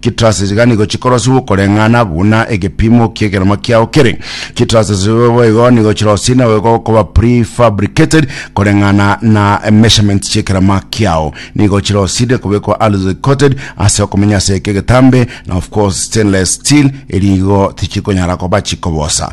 Chitraces iga nigo chikorosiwa okoreng'ana buna egepimo ki'ekeromo kiao kere. Chitraces boigo nigo chirosie na goika okoba prefabricated koreng'ana na measurements chi'ekerama kiao. Nigo chirosire kobekwa alloy coated ase okomenya ase eke egetambe na of course stainless steel erigo tichikonyara koba chikobosa.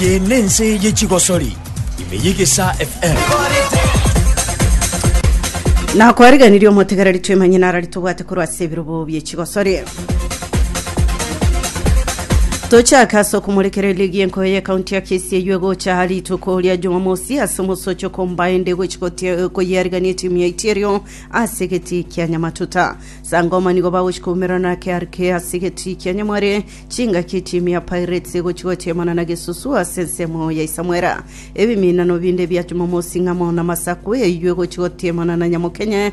Eye nense ye chigosori ime y'egesa FM. nakwareganirie omotegereri twemanye narari tobwate korwa ase ebirobo bie chigosori tochake ase okomorikera eligi y'enkoyo ye kaunti ya kisii eywo egocha ha rituko ria jumamosi ase omosochi okombae ende egochi gotie- koyiarigania etimu ya itierio ase egetii kia nyamatuta sangoma nigo bagochi koumerana na krk ase egetii kia nyamware chingaki etimu ya pirates egochi gotiemana na gesusu ase ensemo ya isamwera ebiminano binde bia jumamosi ng'amo na masaku eywo egochi gotiemana na nyamokenye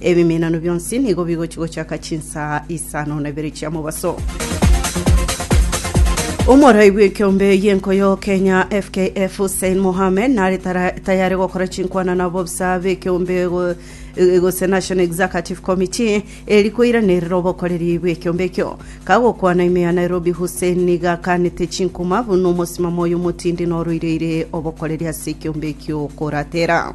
Ebiminano bionsi nigo bigochia gochaka chinsaa isano na ibere chia mobaso. Omorai bw'ekeombe y'enko y'Okenya FKF Hussein Mohamed nare tara- tayare gokora chinkwana na abobisa b'ekeombe go- e- gose National Executive Committee eri koiranerera obokoreri bw'ekeombe ekio. Kagokwana ime ya Nairobi Hussein niga akanete chinkuma buna omosimamo oyo omotindi noroireire obokoreri ase ekeombe ekio koratera.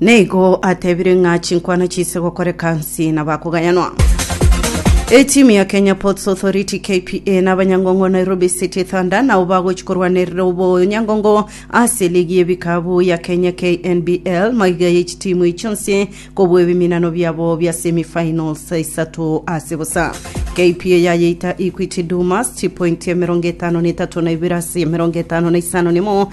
Neigo atebire ng'a chinkwana chiise gokoreka nsi na bakogayanwa. Etimu ya Kenya Ports Authority KPA na abanyangongo Nairobi City Thunder nao bagochi korwanerera obonyangongo ase ligi y'ebikabu ya Kenya KNBL maiga ya echitimu echi chionsi kobua ebiminano biabo bia semi finals isato ase bosa. KPA yayeita Equity Dumas chipointi emerongo etano na etato na ibere ase emerongo etano na isano nemo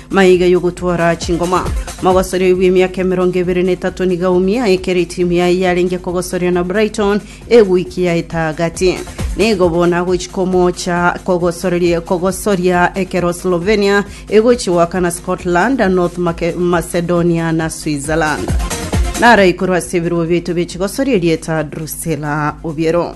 Maiga y'ogotwara chingoma. Mogosoria oyo bw'emiaka emerongo ebere na etato nigo aumia ekero etimu yaye yarenge kogosoria na Brighton egoiki yaeta agati. Nigo bono agochi komocha kogosoreria kogosoria ekero Slovenia egochi goakana Scotland, North Mac- Macedonia na Switzerland. Nara ikorwa ase ebirobo biaito bie chigosoria erieta Drusilla Obiero.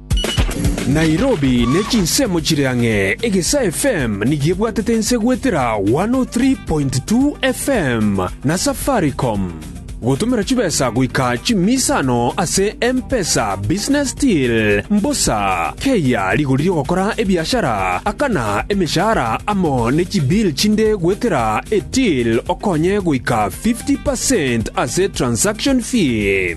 Nairobi ne chinsemo chire ang'e, Egesa FM nigo ebwatete ense goetera 103.2 FM na Safaricom. Gotomera chibesa goika chimisa ano ase M-Pesa Business Deal, mbosa, keyia rigori rigokora ebiashara, akana emeshahara amo ne chibill chinde goetera eTill okonye goika 50% ase transaction fee.